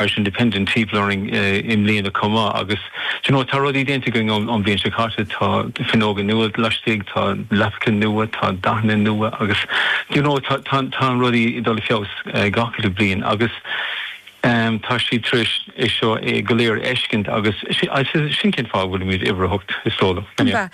Irish Independent taibhreamh orainn i mbliana chomh maith agus you know tá rudaí déanta againn ón mbliain seo caite, tá fuinneoga nua laistigh, tá leapacha nua, tá dathanna nua agus you know tá rudaí ag dul i bhfeabhas gach uile bliain agus em tá siad tar éis é seo go léir a fheiscint agus sin cén fáth a bhfuilimid uimhir a hocht is dóigh liom.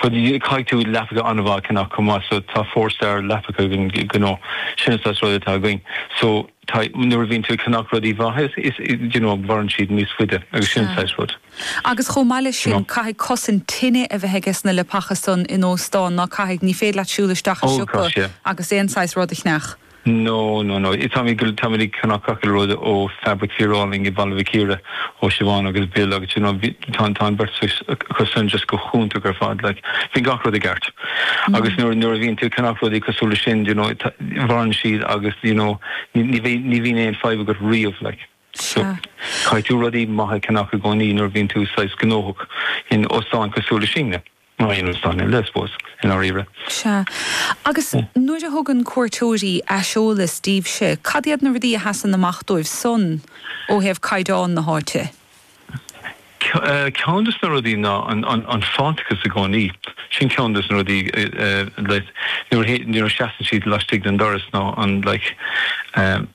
Caithfidh tú leapacha an-mhaith a cheannach chomh maith so tá four star leapacha againn you know sin an saghas rud atá againn so nuair a bhíonn tú ag ceannach rudaí maithe is you know mhaireann siad níos faide agus sin an saghas rud you know. Agus chomh maith leis sin caithfidh cosaint tine a bheith aiges na leapacha san in óstán, ná caithfidh? Ní féidir leat siúl isteach i siopa agus aon saghas rud a cheannach. No, no, no. Táimid go, táimid ag ceannach gach aon rud ó Fabric Fíor Álainn i Baile Mhic Íre, ó Siobhán agus Bill agus d'you know bhí, tá, tá an beirt acu san just go hiontach ar fad like. Bhí gach rud i gceart. Agus nuair, nuair a bhíonn tú ag ceannach rudaí cosúil leis sin d'you know tá, mhaireann siad agus d'you know ní, ní bhí, ní bhíonn aon fadhb agat riamh like. So, caithfidh tú rudaí maithe a cheannach i gcónaí nuair a bhíonn tú saghas gnóthach in óstán cosúil leis sin. Nó aon rud sainiúil, I suppose, i ndáiríre. Sea. Agus nuair a thugann cuairteoirí aiseolas daoibhse, cad iad na rudaí a sheasann amach dóibh san ó thaobh caighdeán na háite? Ceann de na rudaí ná an fháilteachas i gcónaí. Sin ceann de na rudaí like nuair a sheasann siad laistigh den doras ná an like.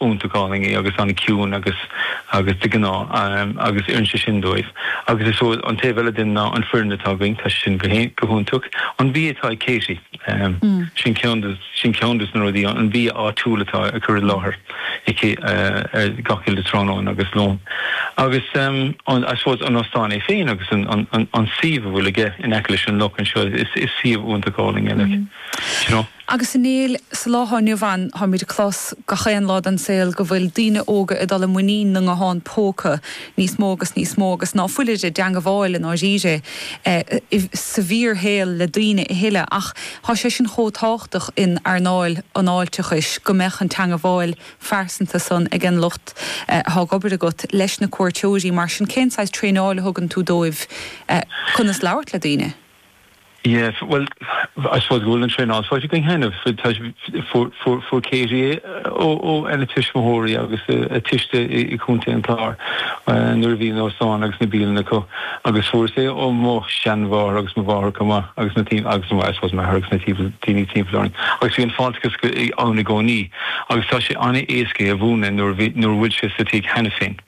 iontach álainn agus an-chiúin agus agus de gnáth agus oireann sé sin dóibh agus is ó an taobh eile de ná an fhoireann atá againn tá siad san go haon go hiontach an bia atá ag Katie sin ceann sin ceann dos na rudaí an bia áitiúil atá a chur i láthair aici ar gach uile tráthnóna agus lón agus an I suppose an óstán é féin agus an an an suíomh a bhfuil aige in aice leis an loch anseo is is suíomh iontach álainn eile you know. Agus ar ndóigh sa lá atá inniu ann táimid ag clos gach aon lá den saol go bhfuil daoine óga ag dul i muinín na nguthán póca níos mó agus níos mó agus ná fuilid ag teangabháil i ndáiríre sa bhfíor shaol le daoine a thuilleadh ach tá sé sin chomh tábhachtach in earnáil an fháilteachais go mbeadh an teangabháil phearsanta san ag an lucht atá ag obair agat leis na cuairteoirí mar sin cén saghas traenáil a thugann tú dóibh conas labhairt le daoine? Yeah, bhuel, I suppose go bhfuil an traenáil faighte againn cheana. Fuair Katie é óna tuismitheoirí agus a tuiste i gContae an Chláir nuair a bhí an óstán agus na bialann acu agus fuaireas-sa é ó mo sheanmháthair agus mo mháthair chomh maith agus na daoine, agus I suppose m'athair agus na daoine timpeall orainn agus bhí an fáilteachas ann i gcónaí agus tá sé an-éasca é a mhúineadh nuair a bhfuil sé sa tigh cheana féin.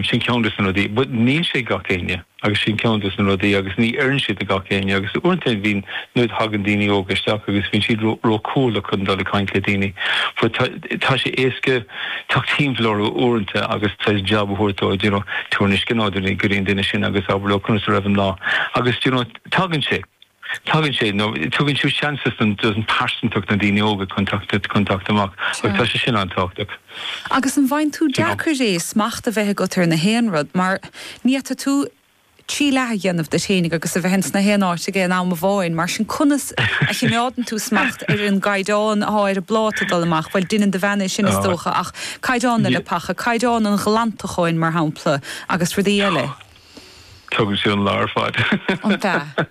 Sin ceann dos na rudaí ach níl sé ag gach éinne. agus sin ceann de na rudaí agus ní oireann siad do gach éinne agus uaireanta bíonn, nuair a thagann daoine óga isteach agus bíonn siad ró-chúthail chun dul ag caint le daoine fásta, tá sé éasca teacht timpeall orthu uaireanta agus saghas jab a thabhairt dóibh, d'you know, tabhair na scones go dtí an duine sin agus abair leo conas a bhí an lá agus d'you know, tagann sé. Tagann sé, nó tugann tú seans dos an pearsantacht na daoine óga chun teacht amach agus tá sé sin an-tábhachtach. Agus an bhfaigheann tú deacair é smacht a bheith agat ar 'chaon rud mar ní fhéadfaidh tú trí leath a dhéanamh díot fhéinig agus a bheith ins 'chaon áit ag an am amháin mar sin conas a chimeádann tú smacht ar an gcaighdeán atá ar an bpláta ag dul amach, bhuel deineann do bhean é sin is dócha ach caighdeán na leapacha, caighdeán an ghlantacháin mar shampla agus rudaí eile. Tógann sé an lá ar fad. An ea?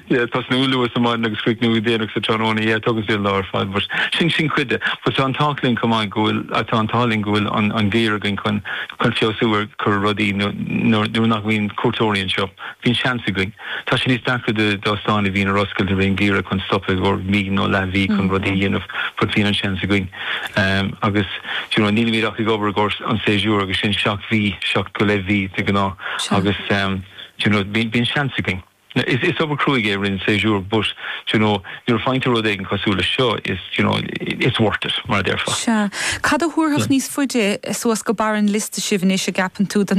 Yeah, tosnú luath sa maidin agus críochnú go déanach sa tráthnóna. Yeah, tógann sé an lá ar fad but sin, sin cuid de. But tá an t-ádh linn chomh maith go bhfuil, tá an t-ádh linn go bhfuil an, an geimhreadh againn chun, chun feabhsú a chur ar rudaí nuair, nuair, nuair nach mbíonn cuairteoirí anseo. Bíonn seans againn. Tá sé níos deacra de, d'óstáin a bhíonn ar oscailt i rith an gheimhridh chun stopadh ar feadh mí nó leathmhí chun rudaí a dhéanamh but bíonn an seans againn. Ehm, agus, do you know, nílimid ach ag obair i gcomhair an séasúr agus sin seacht mhí, seacht go leith mhí de ghnáth Sea. agus ehm, do you know, bíonn, bíonn seans againn. Now, is, is obair cruaigh é i rith an séasúr but, do you know, nuair a fhaigheann tú rud éigin cosúil leis seo is, do you know, i- it's worth it mar a déarfá. Sea. Cad a thabharfadh níos faide suas go barr an liosta sibh anois, a gceapann tú, don.